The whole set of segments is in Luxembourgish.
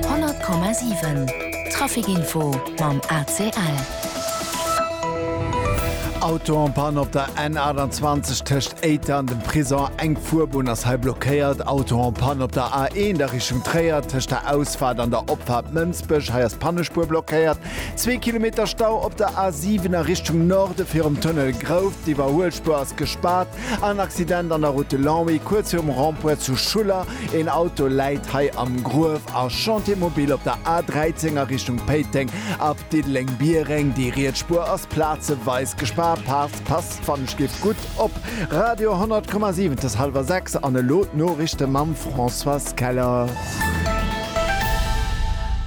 100,7 Trafic-Info mam ACL. Auto en panne op der N28 tëscht Éiter an dem Prison, eng Fuerbunn ass hei blockéiert. Auto en panne op der A1 a Richtung Tréier tëscht der Ausfahrt an der Opfahrt Mënsbech, hei ass d'Pannespuer blockéiert. Zwee Kilometer Stau op der A7 a Richtung Norde virum Tunnel Grouft, d'Iwwerhuelspuer ass gespaart. En Accident an der Route de Longwy, kuerz virum Rond-point zu Schuller. Een Auto läit hei am Gruef a Chantier mobile op der A 13 a Richtung Péiteng ab Diddeleng-Biereng. Déi riets Spuer ass plazeweis gespaart. Paart passt wann ech giff gutt op. Radio 100 Komma 7 t'ass halwer 6 an elo d'Noriichte mam Françoise Keller.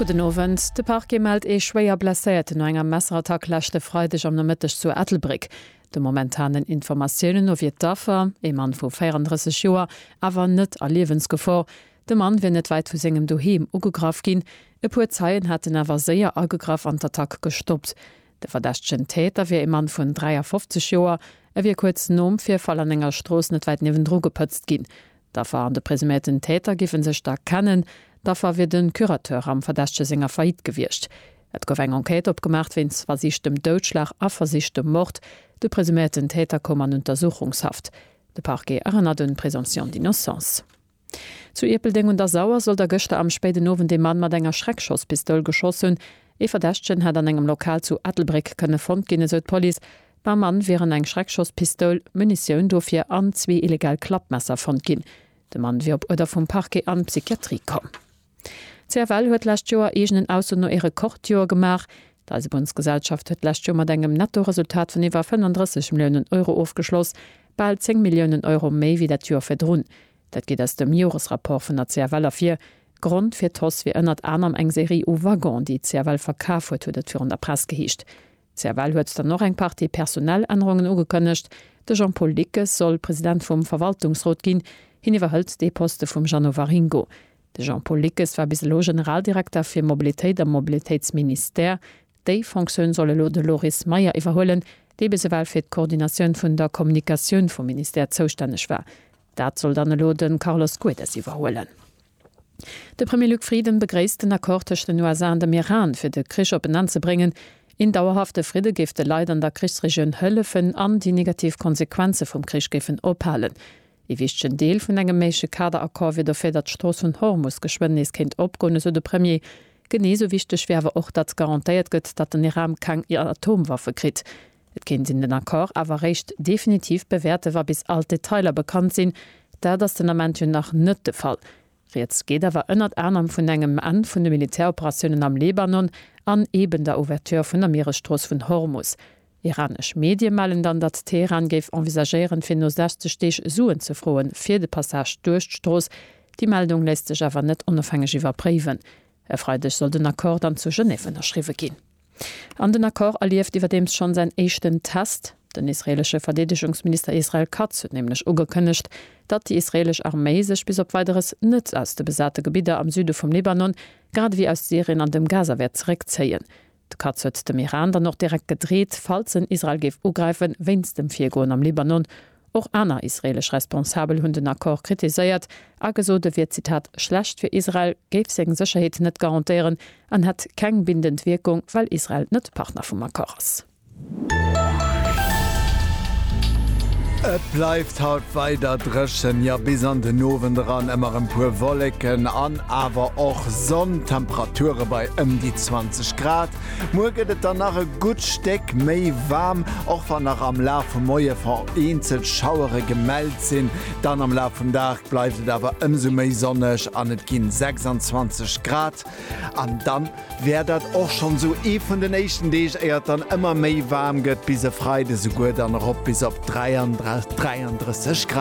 Gudden Owend, De Parquet mellt ee schwéier Blesséierten no enger Messerattack leschte Freideg am Nomëtteg zu Ettelbréck. De momentanen Informatiounen no wier d'Affer, ee Mann vu 34 Joer, awer net a Liewensgefor. De Mann wier net wäit vu sengem Doheem ugegraff ginn. E puer Zeien hätten awer séier agegraff an d'Attack gestoppt. De verdächtegen Täter wier ee Mann vun 53 Joer. E wier kuerz nom Virfall an enger Strooss net wäit niewendru gepëtzt ginn. D'Affer an de presumierten Täter géife sech da kennen. D'Affer wier de Curateur am Verdächtege senger Faillite gewiescht. Et gouf eng Enquête opgemaacht wéinst versichtem Doudschlag a versichtem Mord. De presuméierten Täter koum an Untersuchungshaft. De Parquet erënnert un d'Présomption d'innocence. Zu Ierpeldeng un der Sauer soll da gëschter am spéiden Owend ee Mann mat enger Schreckschosspistoul geschoss hunn. Ee Verdächtegen hätt an engem Lokal zu Ettelbréck kënne fonnt ginn, esou d'Police. Beim Mann wieren eng Schreckschosspistoul, Munitioun dofir an zwee illegal Klappmesser fonnt ginn. De Mann wier op Uerder vum Parquet an d'Psychiatrie komm. D'CFL huet d'lescht Joer eegenen Ausso no ee Rekordjoer gemaach. D'Eisebunnsgesellschaft huet d'lescht Joer mat engem Nettoresultat vun iwwer 35 Milliounen Euro ofgeschloss, bal 10 Milliounen Euro méi wéi dat Joer virdrun. Dat geet aus dem Joresrapport vun der CFL ervir. Grond fir d'Hausse wier ënnert anerem eng Serie u Waggonen, déi d'CFL verkaf huet, huet et virun der Press geheescht. Cervelle huet dann och eng Partie personell Ännerungen ugekënnegt. De Jean-Paul Dickes soll President vum Verwaltungsrot ginn. Hien iwwerhëlt dee Poste vum Jeannot Waringo. De Jean-Paul Dickes war bis elo Generaldirekter fir Mobilitéit am Mobilitéitsministère. Déi Fonctioun soll elo de Loris Meyer iwwerhuelen, dee bis ewell fir d'Koordinatioun vun der Kommunikatioun vum Ministère zoustänneg war. Dat soll dann elo de Carlos Guedes iwwerhuelen. De Premier Luc Frieden begréisst den Accord tëscht den USA an dem Iran, fir de Krich op en Enn ze bréngen. Een dauerhafte Fridde géif de Leit an der Krichsregioun hëllefen an déi negativ Konsequenze vum Krich géifen ophalen. Ee wichtegen Deel vun engem méigleche Kaderaccord wier dofir, datt d'Strooss vun Hormus geschwënn nees kéint opgoen, esou de Premier. Genee esou wichteg wier awer och, datt garantéiert gëtt, datt den Iran keng Atomwaffe kritt. Et kéint een den Accord awer réischt definitiv bewäerte wa bis all d'Detailer bekannt sinn. Dat ass den Ament jo nach net de Fall. Rieds geet awer ënnert anerem vun engem Enn vun de Militäroperatiounen am Libanon an eeben der Ouverture vun der Mieresstrooss vun Hormus. Iranesch Medie mellen dann, datt Teheran géif envisagéieren fir no 60 Deeg Suen ze froe fir de Passage duerch d'Strooss. Déi Meldung léisst sech awer net onofhängeg iwwerpréiwen. E Freideg soll den Accord dann zu Genève ënnerschriwwe ginn. An den Accord erlieft iwwerdeems schonn säin éischten Test. Den israeelesche Verdeedegungsminister Israel Katz huet nämlech ugekënnegt, datt déi israeelesch Arméi sech bis op Weideres net aus de besate Gebidder am Süde vum Libanon, grad ewéi aus Syrien an dem Gaza wäert zeréckzéien. De Katz huet dem Iran dann och direkt gedreet, falls en Israel géif ugräifen, wéinst dem Virgoen am Libanon Och aner israeelesch Responsabel hunn den Accord kritiséiert a gesot, e wier Zitat schlecht fir Israel, géif seng Sécherheet net garantéieren an hätt keng bindend Wierkung, well Israel net Partner vum Accord ass. Et bleift haut weider dréchen, jo bis an den Owend eran ëmmer e puer Wolleken an awer och Sonn. D'Temperature bei ëm déi 20 Grad. Muer gëtt et dann nach e gutt Stéck méi waarm, och wann nach am Laf vum Moie vereenzelt Schauere gemellt sinn. Dann am Laf vum Dag bleift et awer ëmsou méi sonneg an et ginn 26 Grad. An dann wär dat och schonn esou ee vun den éischten Deeg, éier et dann ëmmer méi waarm gëtt, bis e Freide souguer dann erop bis op 33 Grad.